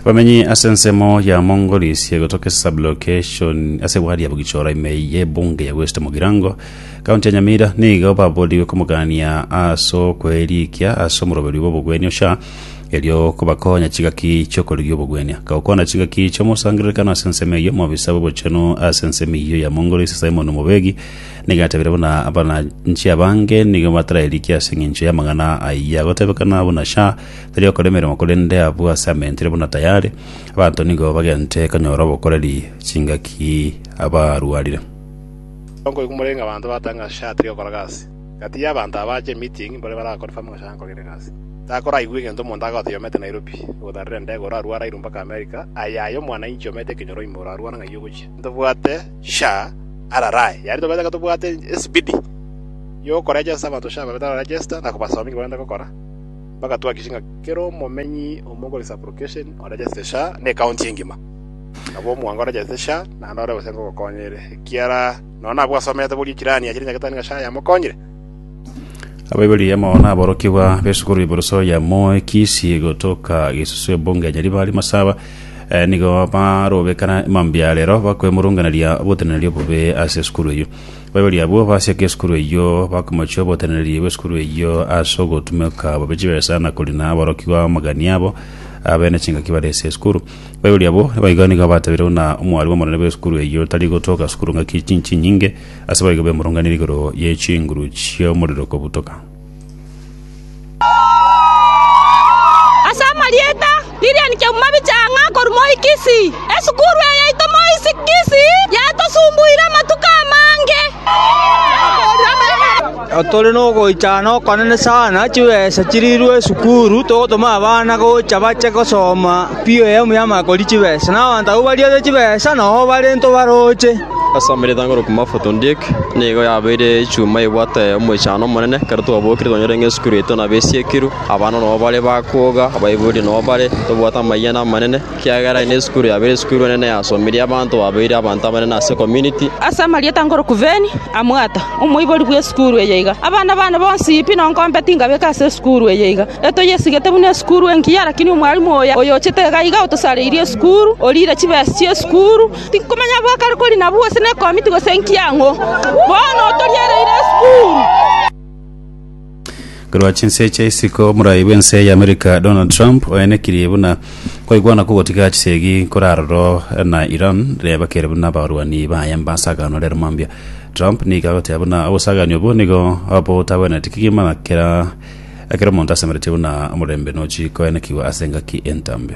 abamenyi ase ensemo ya mongolis egotoka ase sublocation ase wadi ya bogichora ime ye ebunge ya west mogirango kaunti ya nyamira nigo babodigwe komogania ase okoerikia ase omoroberi bw'obogwenia osha erio kobakonya chigaki chi'okorigia obogwenia gokwana chigaki chi'omosangererekano ase ensemo eyio omobisa bw'obochenu ase ensemo eyio ya mongolis simon mobegi Nigo atebire buna abananchi abange nigo batararikia ase engencho y'amang'ana ayia, gotebekana buna sha tari okora emeremo korende abwo ase amentire buna tayari, abanto nigo bagente konyora obokoreri chingaki abarwarire. Songo igo morenge abanto batanga ase sha tari okora gasi. Gati y'abanto aba ache emeeting mbore bare akonfirm ng'a sha nkorire gasi. Takoraigwe egento omonto agotebia omete Nairobi, ogotarera endege ore arware airwe mpaka America, aye aye omwanainchi omete ekenyoro ime ore arware ng'ai ogochia. Ntobwate. sha ararae, yaani tobwate iga tobwate esipidi y'okorejesta abanto sha babe tararejesta na kobasomia ekio barenta gokora, mpaka twakishe ng'a kera omomenyi omo oko ase application orejeste sha na ekaunti engima. Nabo omwango orejeste sha naende ore gose ngogokonya ere ekiara nonya nabwo asomete boria echirani achiria nyagetari ng'a sha yamokonyire. abaibori yamo naborokigwa besukuru iburuso ya moe kisi gotoka gisusu ebunge ya nyaribari masaba eh, nigo barobekana mambia rero bakwemurunganeria oboteneneri obobe ase esukuru eyio abaibori abwo basiaka esukuru eyio bakomochia oboteneneri bw'esukuru eyio ase ogotumeka bobe chibesa na korina aborokigwa amagani abo abene chingaki bare ase esukuru abaibori abwo nigo nigo batabire buna omwari bw'omonene bw'esukuru eyio tari gotoka sukuru ng'aki chinchi nyinge Ase boigo bemurunganire igoro ye chinguru chi'omorero kobutoka. Ase amarieta, Lilian Kemumami Chang'a korwa Moi Kisii. Esukuru eye yaito Moi Kisii yatosumbuire amatuko amange. Tore nogoichana okonene sana, chibesa chirirwe esukuru, togotoma abana gocha bache gosoma pi eyemo ya makori chibesa. Na abanto abwo bariete chibesa nao barento baroche. Ase amaiga etango rokwa mafuta ondiek, nigo yabeire echuma ebwate omoichano omonene, ekero twabokire twanyora ng'a esukuru yaito nabo esiekirwe, abana nao bare bakwoga, abaibori nao bare, tobwate amayia na amanene. Ekiagera ere nesukuru yabeire esukuru enene yasomirie abanto babeire abanto abanene ase community. Ase amarieta ngoroku Ben Amwata, omoibori bw'esukuru eye iga, Abana bane bonsi pi nonkombe tingabeka ase esukuru eye iga. Etoyesigete buna esukuru engiya lakini omwalimu oyo oyochete iga iga otosareiri esukuru, oriire chibesi chi'esukuru. Tinkomanya abwo akare kori nabwo gose nekomiti gose enki ang'o. Bono otoriereire esukuru. Korwa chinse chia isiko, omorai bw'ense y'Amerika Donald Trump oenekirie buna kwaigwana kogotiga chisegi nkore aroro na Iran riria bakere buna abarwani baye mbasagano rero mambia. Trump nigo agoteba buna obosagani obwo nigo botagwenereti kegima na kera ekero omonto asemeretie buna omorembe nochi koenekigwa ase engaki entambe.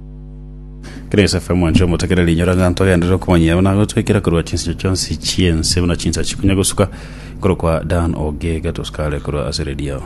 Grace FM mwancho motekere rinyora ng'a twagenderera okomanyia buna gotwekera korwa chinsinyo chionsi chiense buna chinsa chikonya gosuka korokwa Dan Ogega tosikare korwa ase redio